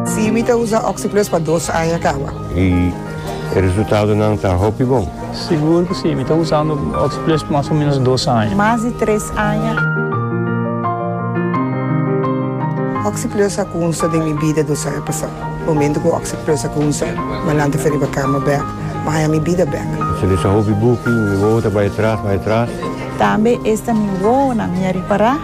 Sí, mi ta usa Oxyplus pa dos aña kaba. I e resultadonan ta hopi bon? Sigur ku sí, mi ta usando Oxyplus mas o ménos dos aña. Mas di tres aña. Oxyplus a kunsa den mi bida dos aña pasá. Momentu ku Oxyplus a kunsa, mi a lanta fen riba kama bèk, mi a haña mi bida bèk. Pasobra esa hopi buki, mi wowo ta bai atras, bai atras. Tambe esta mi wowonan mi a ripará.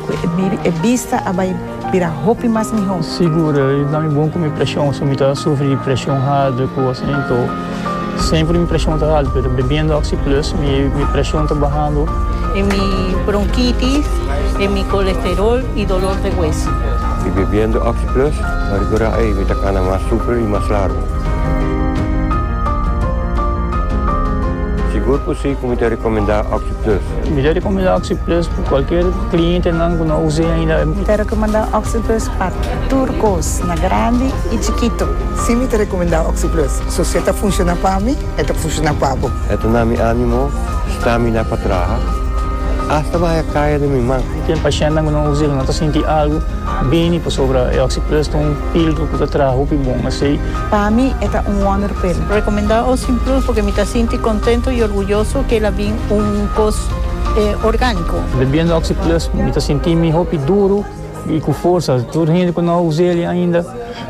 Cu e biri e bista a bay bira hopi mas miho. Sigur, e na mi bon cu mi presion, si mi ta sufri di presion hard o cos así, to semper mi presion ta alto, pero bebiendo Oxy Plus mi presion ta bahando. E mi bronquitis, e mi colesterol y dolor de hueso. Y bebiendo Oxy Plus, pa recura ey mi ta cana mas super y mas largo. Sigur cu si cu mi ta recomenda Oxy Plus. Misericom manda Oxyplus pa cualkier clientenan cu no a usa ainda. Mi ta recomenda Oxyplus pa tur cos, na grandi y chikito. Si mi ta recomenda Oxyplus, so si e ta funciona pa mi, e ta funciona pa bo. E ta na mi animo stamina pa traha, hasta baha caya den mi man. Ten pacientenan cu no a usa y cu no ta sinti algo bini pasobra e Oxyplus ta un filtro cu ta traha hopi bon asey. Pa mi e ta un wonderpil. Recomenda Oxyplus porque mi ta sinti contento y orguyoso cu el a bin. un kos orgánico. Bebiendo Oxyplus mi ta sinti mi hopi duru y cu forsa. Tur hende cu no a uséle ainda,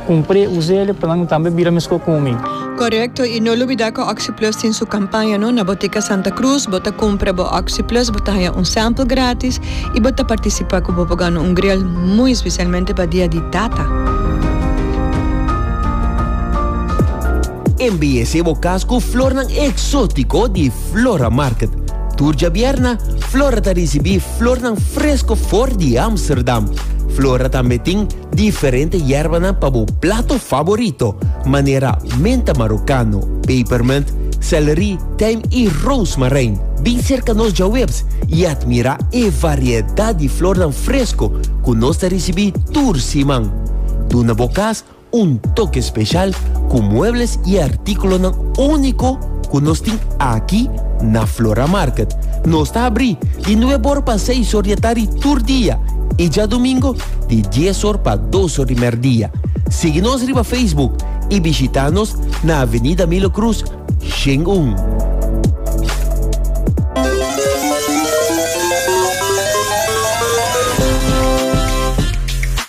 cumpr'e, uséle pa nan tambe bira mescó cu mi. Correcto, y no lubida cu Oxyplus tin su campaña no. Na Botica Santa Cruz bo ta cumpra bo Oxyplus, bo ta haña un sample gratis y bo ta participa cu bo por gana un grill, muy especialmente pa dia di Tata. Embeyesé bo kas ku flornan eksótiko di Flora Market. Tur djabièrna, Flora ta risibí flornan fresko for di Amsterdam. Flora tambe tin diferente yèrbanan pa bo plato faborito, manera menta marokano, pepermint, sèlri, tijm i roosmarijn. Bin serka nos djawebs i atmirá e variedat di flornan fresko ku nos ta risibí tur siman. Duna bo kas Un toke speshal ku muebles i artíkulonan úniko ku nos tin aki na Flora Market. Nos ta abrí di nuebe or pa seis or di atari tur dia i djadumingo di dies or pa dos or di mèrdia. Sigui nos riba Facebook i bishitá nos na Avenida Milo Cruz, Shen un.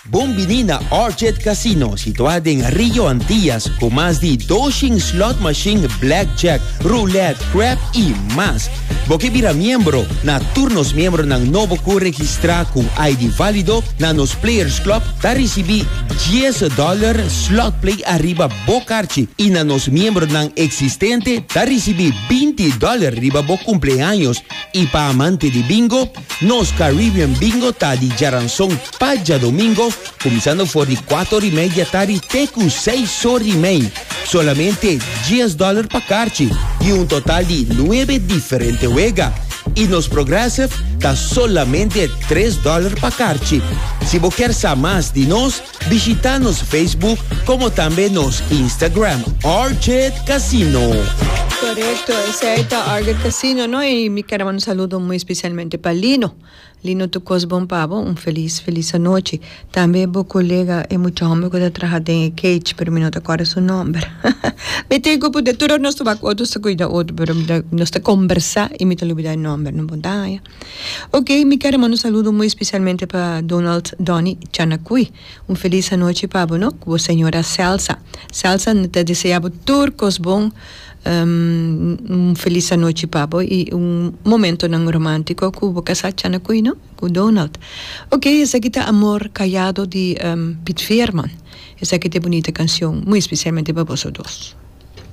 Bon bini na Orchid Casino situá den Rio Antillas ku mas di doshen slot mashin, blackjack, roulette, crap i mas. Bo ke bira miembro na tur nos miembronan nobo ku registrá ku ID válido na nos Players Club ta risibí dies dòler slot play ariba bo karchi i na nos miembronan eksistente ta risibí binti dòler riba bo kumpleaños. I pa amante di bingo, nos Caribbean Bingo ta di Jaranson. Pa djadomingo, kuminsando for di kuato ori mei di atari te ku seis or ri mei, solamente dies dòler pa karchi i un total di nuebe diferente wega. I nos Progressive ta solamente tres dòler pa karchi. Si bo kier sa mas di nos, bishita nos Facebook komo tambe nos Instagram Orchid Casino. Korekto, esei ta Orchid Casino no, i mi kier a manda un saludo muy especialmente pa Lino. Lino tu kos bon pa bo un felis felis anochi tambe e bo kolega e mucha homber ku ta traha den e kage pero mi no ta kòrda su nòmber mi tin ku puntra tur nos ta wak otro ta kuida otro pero mi ta nos ta kombersá i mi ta lubidá e nòmber no bon ta haña ok mi kere manda un saludo muy especialmente pa Donald Donny Chanacui un felis anochi pa bo no ku bo señora Celsa Celsa mi ta desea bo tur kos bon. Un felis anochi pa bo i un momentonan romántico cu bo casá tjana cu Ino, cu Donald. Ok, esaki ta Amor Callado di Piet Veerman. Esaki ta e bunita cancion, muy especialmente pa boso dos.